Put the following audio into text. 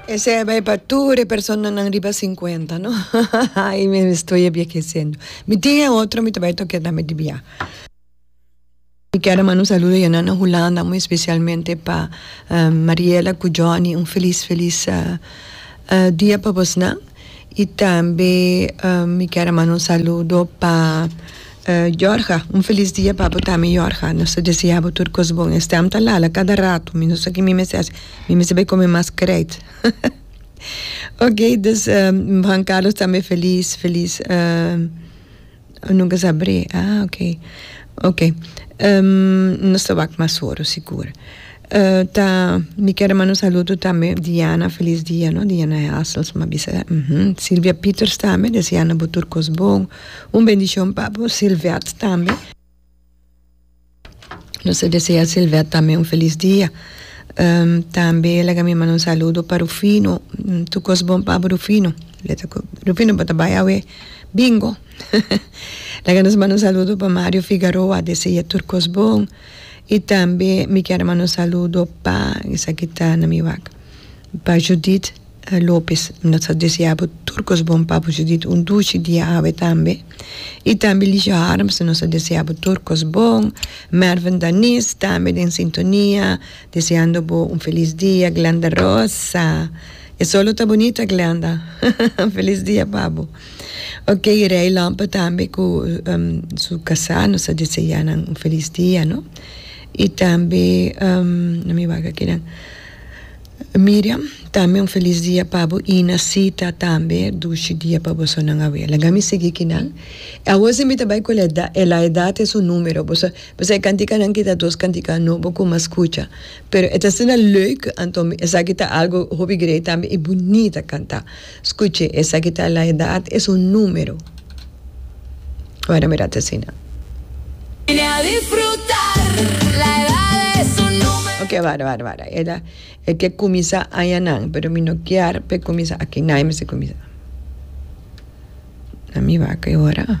Esei a bai pa tur e personanan riba sinkuenta, no? Ai mi estoy ebiekeciendo. Mi tin e otro, mi ta bai tokia tambe di bia. Mi kier a manda un saludo ya nan na Hulanda, muy especialmente pa Mariela cu Johnny. Un feliz, feliz dia pa bosnan. Y tambe mi kier a manda un saludo pa Jorge, un feliz dia pa bo tambe Jorge, nos ta desea bo tur cos bon, e stem ta lala cada rato, mi no sa ki mi mester haci, mi mester bay come mas krijt okay, dus Juan Carlos tambe feliz feliz. Oh nunca sa abrí ah ok ok nos ta wak mas oro sigur ta mi kier a manda un saludo tambe Diana feliz dia no Diana Helsma a bisa Silvia Peters tambe deseando bo tur kos bon un bendicion pa bo Silvette tambe. Nos ta desea Silvette tambe un felis dia. Tambe e laga mi manda un saludo pa Rufino. Tur cos bon pa bo Rufino. Rufino bo ta bai awe bingo. laga nos manda un saludo pa Mario Figaroa dese'e tur cos bon. Y tambe mi kier manda un saludo pa esaki ta na mi wak pa Judith. Lopez, Nos ta desea bo tur kos bon pa bo Judith un duchi dia awe tambe. Y tambe Ligia Harms, Nos ta desea bo tur kos bon. Mervin Daniz tambe den sintonia deseando bo un feliz dia. Glenda Rosa, E solo ta bonita Glenda, feliz dia pa bo. Ok, Rey Lompe tambe cu su casa nos ta desea nan un feliz dia no. Y tambe, na mi waga aki nan. Miriam, Tambe un felis dia pa bo i na sita tambe dushi dia pa boso nan awe. Laga mi sigui ki nan. E awo si mi ta bai ku el eda, el a eda te su numero, bo sa, bo sa e kantikanan ki ta dos kantikanan nobo ku mas skucha. Pero e ta asina leuk, anto mi, esaki ta algu hopi grei tambe i bunita kanta. Scuche, esaki ta la edad, es un numero. Wou na mira ta asina. Ok, wada, wada, wada. E ta, e ke cuminsa añanan, pero mi no kier p'e cuminsa aki. Nai mester cuminsa. Na mi wak e ora.